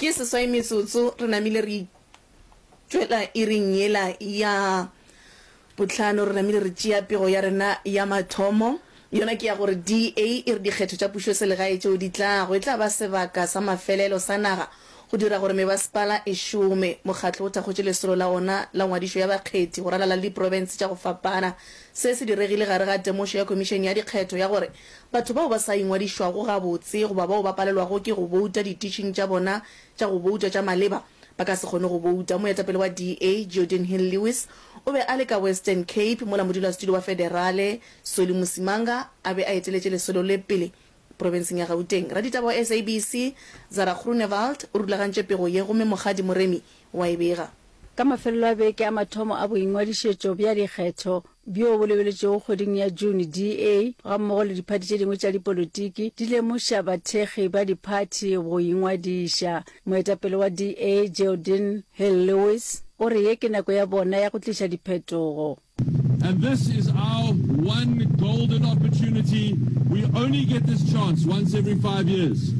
Ke seswai metsotso re namile re itšwela iring yela ya bohlano, re namile re tšea pego ya rena ya mathomo, yona ke ya gore DA e re dikgetho tša pušoselegae tšeo di tlago e tla ba sebaka sa mafelelo sa naga go dira gore mebasepala e šome. Mokgatlo o thakgotše lesolo la ona la ngwadišo ya bakgethi go ralala le diprofense tša go fapana. Se se diregile gare ga temošo ya Khomišene ya Dikgetho ya gore Batho bao ba sa ingwadišwago gabotse goba bao ba palelwago ke go bouta dititšing tša bona tša go bouta tša maleba ba ka se kgone go bouta. Moetapele wa DA, Geordin Hill-Lewis, o be a le ka Western Cape mola modulasetulo wa federale, Solly Musimanga, a be a eteletše lesolo le pele profenseng ya Gauteng. Raditaba wa SABC, Zara Groenewald, o rulagantše pego ye gomme Mokgadi Moremi wa e bega. Ka mafelelo a beke a mathomo a boingwadišetšo bja dikgetho bjo bo lebeletšwego kgweding ya June, DA gammogo le diphathi tše dingwe tša dipolotiki di lemoša bathekgi ba diphathi go ingwadiša. Moetapele wa DA, Geraldine Hill-Lewis, o re ye ke nako ya bona ya go tliša diphetogo. And this is our one golden opportunity. We only get this chance once every five years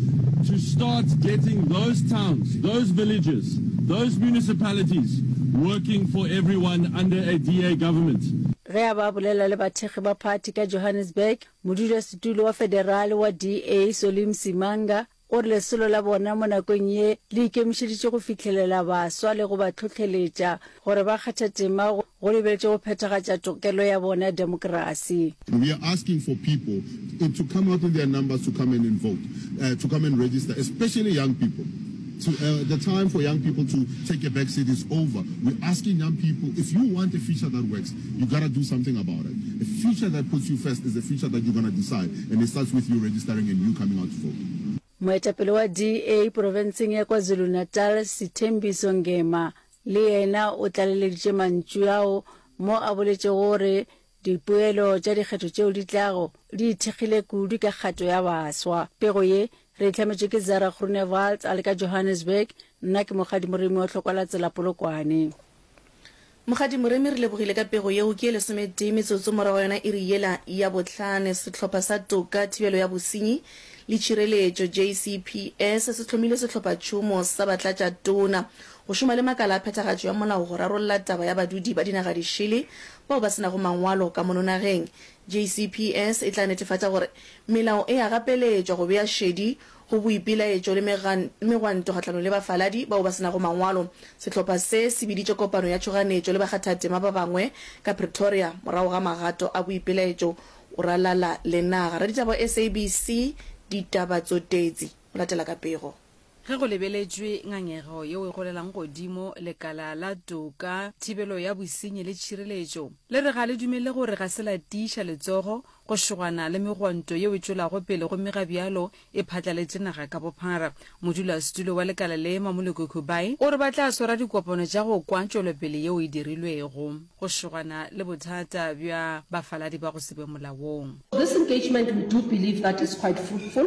to start getting those towns, those villages, those municipalities working for everyone under a DA government. ge a ba bolela le bathekgi ba phathi ka johannesburg modulasetulo wa federale wa da solim simanga gore lesolo la bona mo nakong ye le ikemišeditše go fihlelela baswa le go ba tlhohleletša gore ba kgathe tema go lebeletšwe go phethagatša tokelo ya bona ya demokrasi. We are asking for people to come out in their numbers to come and vote, to come and register, especially young people. The time for young people to take a back seat is over. We are asking young people, if you want a future that works, You gotta do something about it. A future that puts you first is a future that you're gonna decide and it starts with you registering and you coming out to vote. Moetapele wa DA porofenseng ya KwaZulu-Natal, Sithembiso Ngema, le yena o tlaleleditše mantšu ao mo a boletšego gore dipoelo tša dikgetho tšeo di tlago di ithekgile kudu ka kgato ya baswa. Pego ye re e hlametšwe ke Zara Groenewald a le ka Johannesburg, nna ke Mokgadi Moremi wa Tlhokwalatsela Polokwane. Mokgadi Moremi re lebogile ka pego yeo. Ke ye lesometee metsotso morago ga yona iri yela ya bohlane, sehlopha sa Toka, Thibelo ya Bosenyi le Tšhireletšo, JCPS, se hlomile sehlophatšhomo sa batlatša tona go šoma le makala a phethagatšo ya molao go rarolla taba ya badudi ba dinaga dišele bao ba se nago mangwalo ka mono nageng. JCPS e tla netefatša gore melao e a gapeletšwa go bea šedi Go boipelaetšo le megwanto kgahlanong le bafaladi bao ba se nago mangwalo, sehlopha se se biditše kopano ya tšhoganetšo le bakgathatema ba bangwe ka Pretoria morago ga magato a boipelaetšo go ralala le naga. Raditaba SABC ditaba tsotetsi go latela ka pego. Ge go lebeletšwe ngangego yeo e golelang godimo, lekala la toka, thibelo ya bosenyi le tšhireletšo le re ga le dumele gore ga se la tiiša letsogo Go šogana le megwanto yeo e tšwelago pele gomme ga bjalo e phatlaletše naga ka bophara, modulasetulo wa lekala le, Mamuloko Kubayi, o re ba tla swara dikopano tša go kwa tšwelopele yeo e dirilwego go šogana le bothata bja bafaladi ba go se be molaong. This engagement we do believe that is quite fruitful.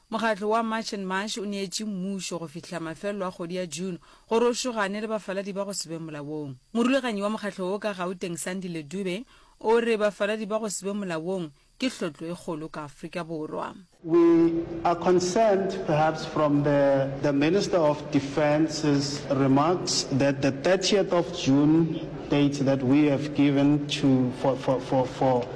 Mokgatlo wa March and Marsh o neetše mmušo go fihla mafelelo a kgwedi ya June gore o šogane le bafaladi ba go se be molaong. Morulaganyi wa mokgatlo wo ka Gauteng Sandile Dube o re bafaladi ba go se be molaong ke hlotlo e kgolo ka Afrika Borwa. We are concerned perhaps from the the Minister of Defence's remarks that the thirtieth of June date that we have given to for for for for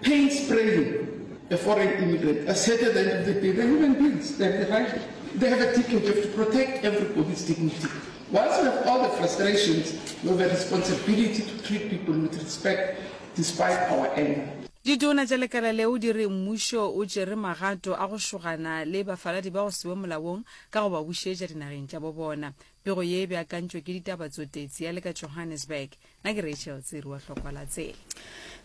Paint spraying a foreign immigrant as at the end of the day, they're human beings, they have the right, they have a dignity, you have to protect everybody's dignity. Once we have all the frustrations, we have a responsibility to treat people with respect despite our anger. Ditona tša lekala leo di re mmušo o tšere magato a go šogana le bafaladi ba go sewe molaong ka go ba bušetša dinageng tša bo bona. Pego ye e beakantšwe ke ditaba tsotetsi ya le ka Johannesburg. na ke rachel tsiri wa hlokwa la tsela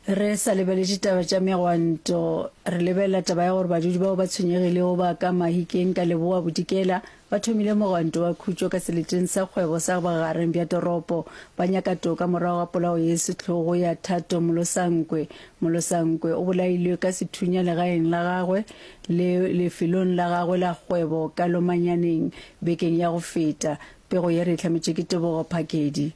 re sa lebeletše taba tša megwanto re lebelela taba ya gore badudi bao ba tshwenyegilego ba ka mahikeng ka leboa bodikela ba thomile mogwanto wa khutšo ka seleteng sa kgwebo sa bagareng bja toropo ba nyaka toka morago ga polao ye setlogo ya thato molosankwe molosankwe o bolailwe ka sethunya legaeng la gagwe le lefelong la gagwe la kgwebo ka lomanyaneng bekeng ya go feta pego ye re e hlametše ke tebogo phakedi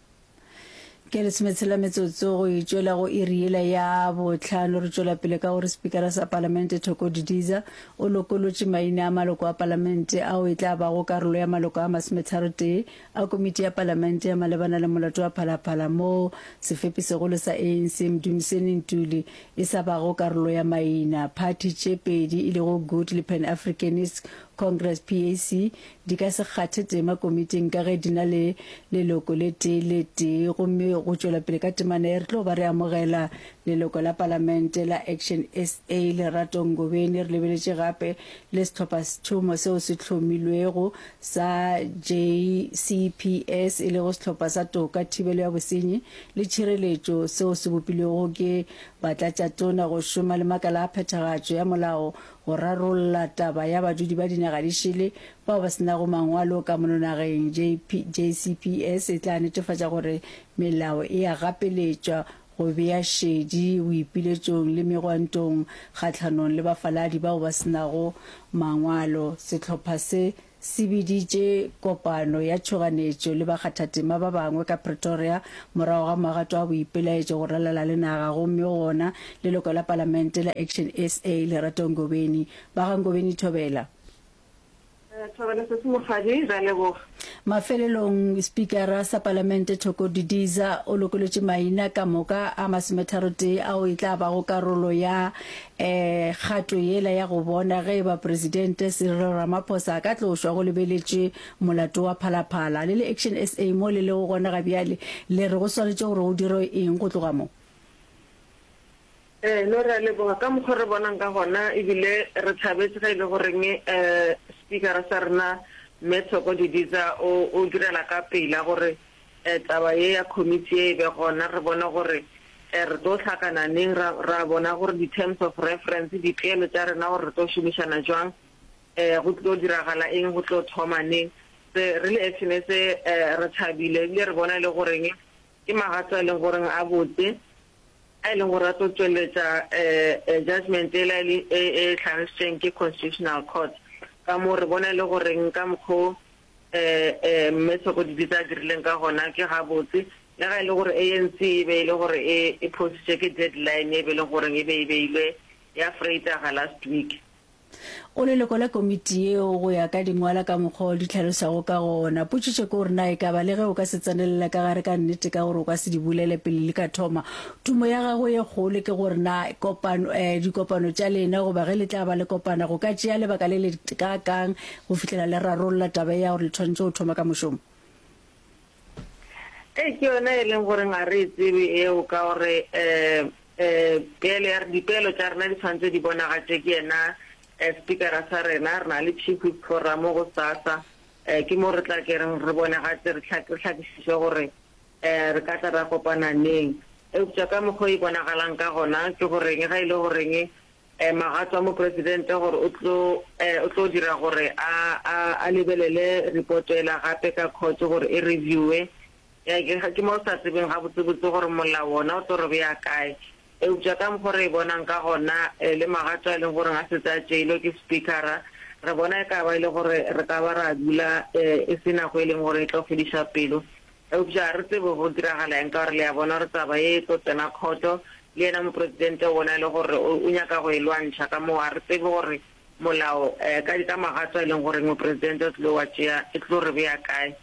Ke lesometshela metsotso go e tšwela go iri yela ya bohlano re tšwela pele ka gore spikara sa palamente Thoko Didiza o lokolotše maina a maloko a palamente ao e tla bago karolo ya maloko a masometharotee a komiti ya palamente ya malebana le molato wa phalaphala moo sefepisegolo sa ANC Mdumiseni Ntuli e sa bago karolo ya maina. Phathi tše pedi e lego Good le Pan Africanist Congress, PAC, Di ka se kgathe tema komiting ka ge di na le leloko le tee le tee gomme go tšwela pele ka temana ye re tlo ba re amogela leloko la Palamente la Action SA, Lerato Ngobeni, re lebeletše gape le sehlopha-sethomo seo se hlomilwego sa JCPS e lego Sehlopha sa Toka, Thibelo ya Bosenyi le Tšhireletšo seo se bopilwego ke Batlatšatona go šoma le makala a phethagatšo ya molao go rarolla taba ya badudi ba dinaga di šele bao ba se nago mangwalo ka mono nageng, JCPS e tla netefatša gore melao e a gapeletšwa go bea šedi boipiletšong le megwantong kgahlanong le bafaladi bao ba se nago mangwalo, sehlopha se se biditše kopano ya tšhoganetšo le bakgathatema ba bangwe ka Pretoria morago ga magato a boipelaetšo go ralala le naga gomme go gona leloko la palamente la Action sa, Lerato Ngobeni. Ba ga Ngobeni Thobela. Thobela sesi mokgadi, re a leboga. Mafelelong, Spikara sa palamente Thoko Didiza o lokolotše maina ka moka a masometharotee ao e tla bago karolo ya kgato yela ya go bona ge e ba Presidente Cyril Ramaphosa a ka tlošwa go lebeletše molato wa phalaphala. Le le Action SA mo le lego gona ga bjale le re go swanetše gore go dirwe eng go tloga mo? Ee, no re a leboga ka mokgwa re bonang ka gona ebile re thabetše ge e le goreng Spikara sa rena Mme Thoko Didiza o direla ka pela gore taba ye ya committee ye e be gona re bone gore re tlo hlakana neng, ra ra bona gore di terms of reference, dipeelo tša rena gore re tlo šomišana jwang, go tlo diragala eng, go tlo thoma neng. Se re le FNS re thabile ebile re bona e le goreng ke magato a e leng gore a botse, a e leng gore a tlo tšweletša judgement e la e hlagisitšweng ke Constitutional Court. Ka moo re bona e le goreng ka mokgwa o Ee, Mme Sokodidi se a dirileng ka gona ke gabotse. Le ga e le gore ANC e be e le gore e e phositše ke deadline e be e le goreng e be e beilwe ya Vrydaga last week. Go leloko la komiti yeo go ya ka dingwala ka mokgwa o di hlalosago ka gona. Potšitšo ke gore na e ka ba le ge o ka se tsenelele ka gare ka nnete ka gore o ka se di bulele pele li ka thoma. Tumo ya gagwe ye kgolo ke gore na kopano, eh, dikopano tša lena goba ge le tla ba le kopana go ka tšea lebaka le letekaakang Go fihlela le rarolla taba ye ya gore le tshwanetse go thoma ka mošomo. Ee, ke yona e leng gore ga re e tsebe eo ka gore peelo ya re, dipeelo tša rena di tshwanetse di bonagatšwe ke yena Spikara sa rena. Re na le Chief Whip Forum gosasa, ke mo re tla kereng re bonagatše, re hlakišiše gore re ka tla ra kopana neng. Eupša ka mokgwa o e bonagalang ka gona ke goreng, ga e le goreng Magato a Mopresidente gore o tlo, o tlo dira gore a, a, a lebelele reporto ela gape ka court gore e reviewe. Ke, ke mo re sa tsebeng gabotsebotse gore molao wona o tlo re bea kae. Eupša ka mokgwa o re e bonang ka gona, le magato a e leng gore a setse a tšeilwe ke Spikara, re bona e ka ba e le gore re ka ba ra dula e se nako e leng gore e tlo fediša pelo. Eupša ga re tsebe go diragala eng, ka gore le a bona gore taba ye e tlo tsena khoto, le yena Mopresidente ona e le gore o nyaka go e lwantšha. Ka moo ga re tsebe gore molao ka di ka magato a e leng goreng Mopresidente o tlilo wa tšea e tlilo re bea kae.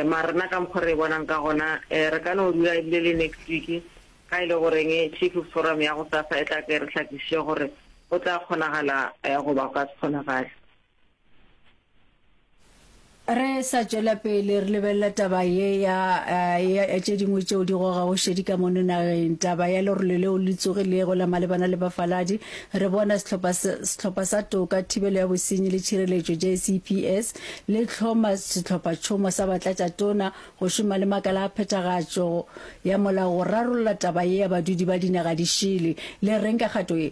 Mara nna ka mokgwa re e bonang ka gona re ka no dula ebile le next week ga e le goreng Chiefs Forum ya gosasa e tla tle e re hlakišiše gore go tla kgonagala goba go ka se kgonagale. re sa tšwela pele re lebelela taba ye ya eh, tše dingwe tšeo di gogago šedi ka mono nageng taba ya lerole leo le tsogilego la malebana le bafaladi re bona sehlopha sa toka thibelo ya bosenyi le tšhireletšo jcps le tlhoma sehlophatšhomo sa batlatša tona go šoma le makala a phethagatšo ya molao go rarolla taba ye ya badudi ba dinaga di šele le reng ka kgato ye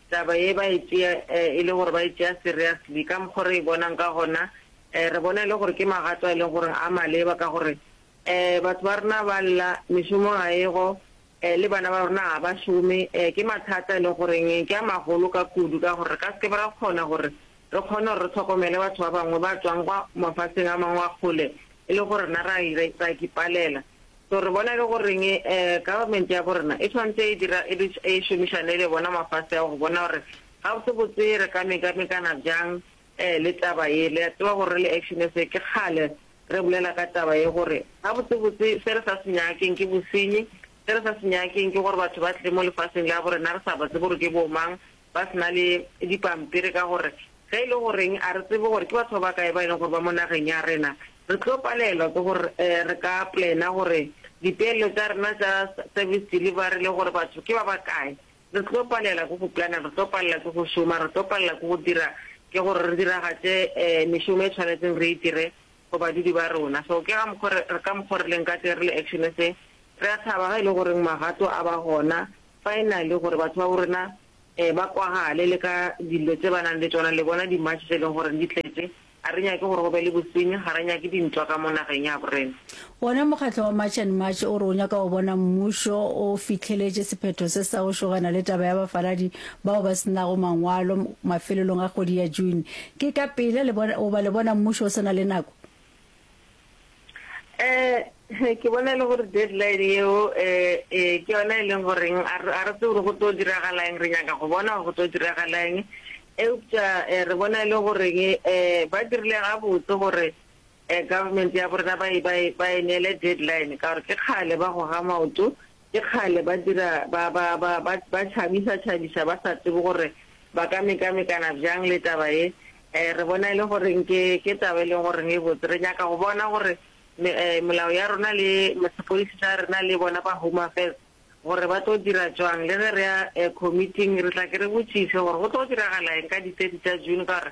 Taba ye ba e tšea e le gore ba e tšea seriously. Ka mokgwa o re e bonang ka gona, re bona e le gore ke magato a e leng gore a maleba ka gore batho ba rena ba lla, mešomo ga e go, le bana ba rena ga ba šome. Ke mathata a e leng gore ke a magolo ka kudu ka gore re ka se ke be ra kgona gore re kgone gore re hlokomele batho ba bangwe ba tšwang kwa mafaseng a mangwe a kgole e le go rena ra a ipalela. So re bona e le goreng um government ya bo rena e tshwanetse e dira e be e šomišane le bona mafase ao go bona gore gabotsebotse re ka mekamekana bjang um le taba ye. Le a tseba gore re le Action SA ke kgale re bolela ka taba ye gore gabotsebotse se re sa se nyakeng ke bosenyi, se re sa se nyakeng ke gore batho ba tle mo lefaseng la bo rena re sa ba tsebe gore ke bo mang, ba se na le dipampiri ka gore ge e le goreng a re tsebe gore ke batho ba bakae ba e leng gore ba mo nageng ya rena, re tlo palelwa ke gore re ka plana gore dipeelelo tša rena tša service delivery le gore batho ke ba bakae. Re tlo palela ke go plana, re tlo palela ke go šoma, re tlo palela ke go dira ke gore re diragatše mešomo e tshwanetseng re e dire go badudi ba rona. So ke ga mokgo re, re ka mokgo re leng ka teng re le Action SA, re a thaba ge e le goreng magato a ba gona finally gore batho ba bo rena um ba kwagale le ka dilo tse ba nang le tšona. Le bona di-march tse e leng gore di tletše. Ga re nyake gore go be le bosenyi, ga re nyake dintwa ka mo nageng ya bo rena. Wona mokgatlo wa March and March o re o nyaka go bona mmušo o fihleletše sephetho se sa go šogana le taba ya bafaladi bao ba se nago mangwalo mafelelong a kgwedi ya June. Ke ka pela le bona, goba le bona mmušo o se na le nako? Eh, ke bona e le gore deadline yeo eh, eh, ke yona e leng goreng a re a re tsebe gore go tlo diragala eng, re nyaka go bona gore go tlo diragala eng. Eupša eh, re bona e le goreng eh, ba dirile gabotse gore Eh government ya borena ba e ba e ba e neele deadline ka gore ke kgale ba goga maoto ke kgale ba dira ba ba ba ba ba tšhabisa tšhabisa ba sa tsebe gore ba ka mekamekana bjang le taba ye eh re bona e le goreng ke ke taba e leng goreng e botse re nyaka go bona gore me, eh, melao ya rona le sepodisi sa rena le bona ba home affairs gore ba tlo dira jwang le ge re ya eh, committing re tla ke re botšiše gore go tlo diragala eng ka di-thirty tša june ka gore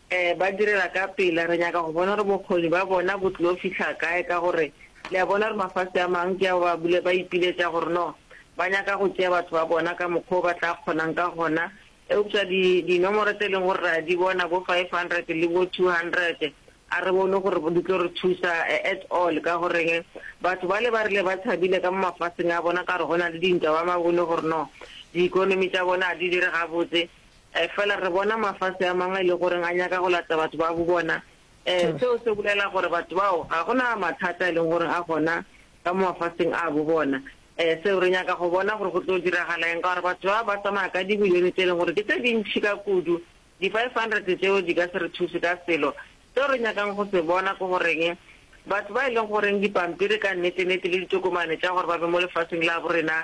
Ee, ba direla ka pela. Re nyaka go bona gore bokgoni ba bona bo tlo fihla kae, ka gore le a bona gore mafase a mangwe ke ao ba bile ba ipiletša gore no ba nyaka go tšea batho ba bona ka mokgwa o ba tla kgonang ka gona. Eupša di, dinomoro tse e leng gore re a di bona, bo five hundred le bo two hundred, a re bone gore di tlo re thusa at all. Ka goreng? Batho bale ba rile ba tshabile ka mo mafaseng a bona ka gore go na le dintwa, ba ma bone gore no di-economy tša bona ga di dire gabotse. Efela re bona mafase a mangwe e le gore a nyaka go lata batho ba bobona. Seo se bolela gore batho bao ga go na mathata a e leng gore a gona ka mo mafaseng a bobona. Seo re nyaka go bona gore go tlo diragala eng, ka gore batho bao ba tsamaya ka dibilione tše e leng gore ke tše dintši ka kudu. Di-500 tšeo di ka se re thuse ka selo. Seo re nyakang go se bona ke goreng, batho ba e leng gore dipampiri ka nnete-nnete le ditokomane tša gore ba be mo lefaseng la borena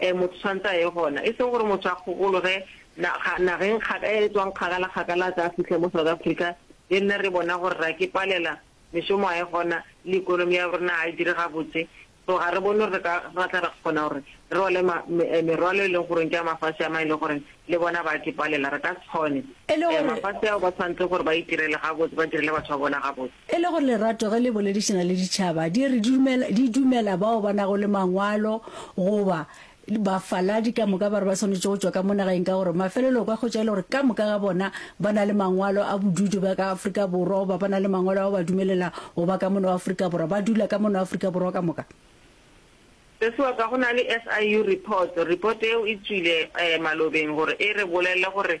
Ee, motho o tshwanetse a ye gona. E sego gore motho a kgogologe naga, nageng kga, e e tswang kgakala, kgakala a tla a fihle mo South Africa, le nna re bona gore ra ke palela, mešomo ga e gona, le economy ya rena ga e dire gabotse. So ga re bone gore re ka, ra tla ra kgona gore re rwale ma, me, eh, merwalo e leng gore ke ya mafase a mang e leng gore le bona ba a ke palela. Re ka se kgone. E le Eh, gore. mafase ao ba tshwanetse gore ba itirele gabotse, ba direle batho ba bona gabotse. E le gore lerato ge le boledišana le ditšhaba di re dumela, di dumela bao ba nago le Mangwalo goba bafaladi ka moka ba re ba swanetše go tšwa ka mo nageng ka gore mafelelo o ka hwetša e le gore ka moka ga bona ba na le mangwalo a bodudu ba ka Afrika Borwa goba ba na le mangwalo ao ba dumelela go ba ka mono wa Afrika Borwa, ba dula ka mono wa Afrika Borwa ka moka. Sesi wa ka, go na le SIU report, report eo e tšwile um malobeng gore e re bolelele gore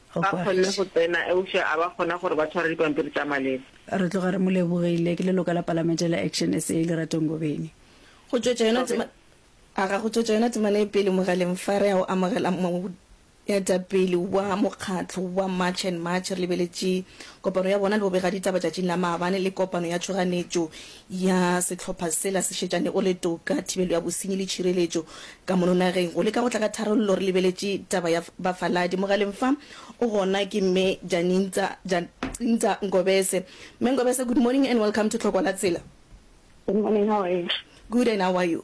Ba kgonne go tsena, eupša a ba kgona gore ba tshware dipampiri tša maleba. Re tloga re mo lebogile. Ke leloko la Palamente la Action SA, Lerato Ngobeni. Go tšwetša yona tema, aga, go tšwetša yona temana e pele mogaleng fa re ya go amogela moetapele wa mokgatlo wa March and March, re lebeletše kopano ya bona le bobegaditaba tšatšing la maabane le kopano ya tšhoganetšo ya sehlopha sela se šetšane o le toka, thibelo ya bosenyi le tšhireletšo ka mono nageng. Go leka go tla ka tharollo re lebeletše taba ya bafaladi. Mogaleng fa o gona ke Mme Janintsa, Jacintsa, Ngobese. Mme Ngobese, good morning and welcome to Tlhokwa la Tsela. Good morning, how are you? Good and how are you?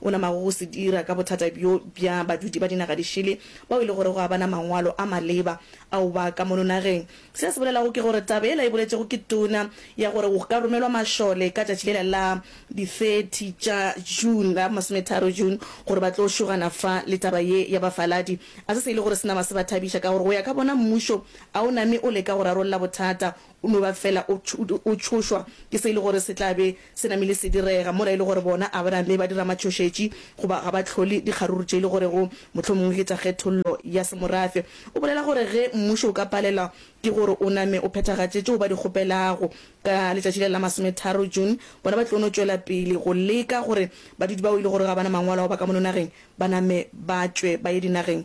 O na mago go se dira ka bothata bjo bja badudi ba dinaga di šele bao e le gore go a ba na mangwalo a maleba ao ba ka mono nageng. Se a se bolelago ke gore taba yela e boletšego ke tona ya gore go ka romelwa mašole ka tšatši lela la di 30 tša June, la masometharo June, gore ba tlo šogana fa le taba ye ya bafaladi. A se se e le gore se nama se ba thabiša ka gore go ya ka bona mmušo a o name o leka go rarolla bothata O no ba fela o, o tšhošwa ke se e le gore se tla be se namile se direga, mola e le gore bona Abrame ba dira matšhošetši goba ga ba hlole dikgaruru tše e le gorego mohlomongwe ke tša kgethollo ya semorafe. O bolela gore ge mmušo o ka palelwa ke gore o name o phethagatše tšeo ba di kgopelago ka letšatši le la masometharo June, bona ba tlo no tšwela pele go leka gore badudi bao e le gore ga ba na mangwalo ao ba ka mono nageng ba name ba tšwe ba ye dinageng